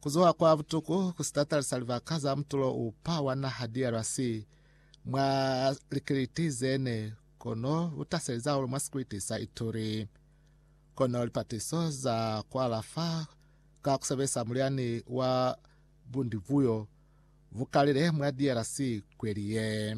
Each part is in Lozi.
Kuzuha kwa butuku ku sitatalisa libaka za mutulo upa wa naha DRC mwa likiliti zene kono butaseli zahulu mwa sikwiti sa Ituri. Kono lipatiso za kualafa ka kusebelisa mulyani wa bundivuyo bukalile mwa DRC kweli ye.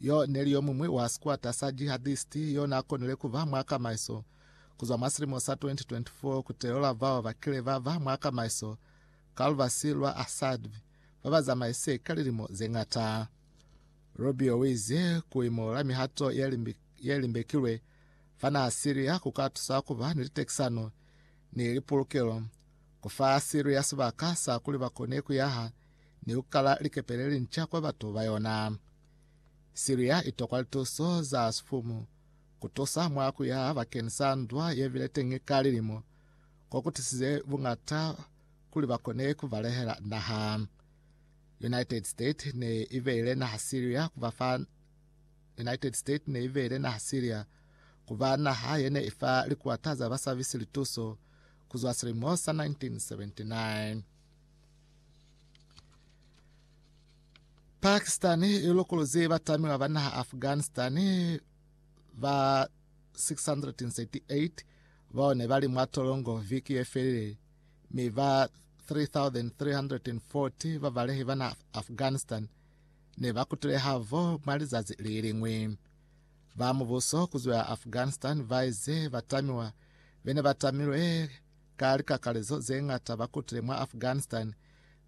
Yo neli yomuñwi wa sikwata sa jihadisti yo n'a konile ku ba mwa kamaiso ku zwa mwa silimo sa 2024 ku telola bao ba kile ba ba mwa kamaiso ka lubasi lwa Assad ba ba zamaise ka lilimo ze ñata. Rubio u ize ku imo la mihato ye limbekilwe fa naha Syria ku ka tusa ku ba ni litekisano ni lipulukelo, ku fa Syria sibaka sa kuli ba kone ku yaha ni ku kala likepe le linca kwa batu ba yona. Siria i tokwa lituso za sifumu ku tusa mwa ku yaha bakeni sa ndwa ye bile teñi ka lilimo, ko ku tisize buñata kuli ba kone ku balehela naha. United States ne i beile naha Siria ku ba fa United States ne i beile naha Siria ku ba naha ye ne i fa likuata za basabisi lituso ku zwa silimo sa 1979. Pakistan i lokoloze batamilwa ba naha Afghanistan ba 638 bao ne ba li mwa tolongo viki ye felile mi ba 3340 babalehi ba naha Afghanistan ne ba kutile havo mwa lizazi le liñwi. Ba mubuso ku zwa Afghanistan ba ize batamiwa bene ba tamilwe Ka likakalezo ze ñata ba kutile mwa Afghanistan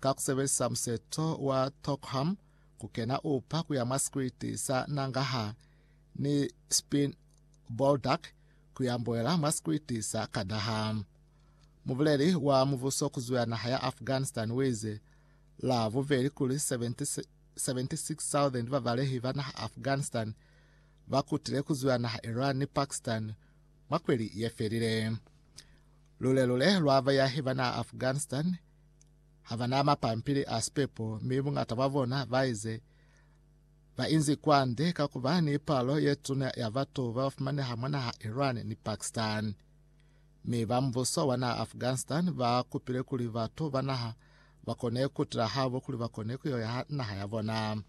ka ku sebelisa museto wa Tokham ku kena upa ku ya mwa sikwiti sa Nangarhar ni Spin Boldak ku ya mboela mwa sikwiti sa Kandahar. Mubuleli wa mubuso ku zuya naha ya Afghanistan wize la bubeli kuli 76,000 babalehi ba naha Afghanistan ba kutile ku zuya naha Iran ni Pakistan Mwa kweli ye felile, lule-lule lwa bayahi ba naha Afghanistan ha ba na mapampili a sipepo mi bungata bwa bona ba ize ba inzi kwande ka ku ba ni palo ye tuna ya batu ba ba fumaneha mwa naha Iran ni Pakistan. Mi ba mbuso wa naha Afghanistan ba kupile kuli batu ba naha ba kone ku tila habo kuli ba kone ku yo yaha naha ya bona.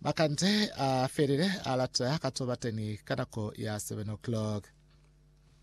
Makande a felile a lata ka to bateni ka nako ya 7 o'clock.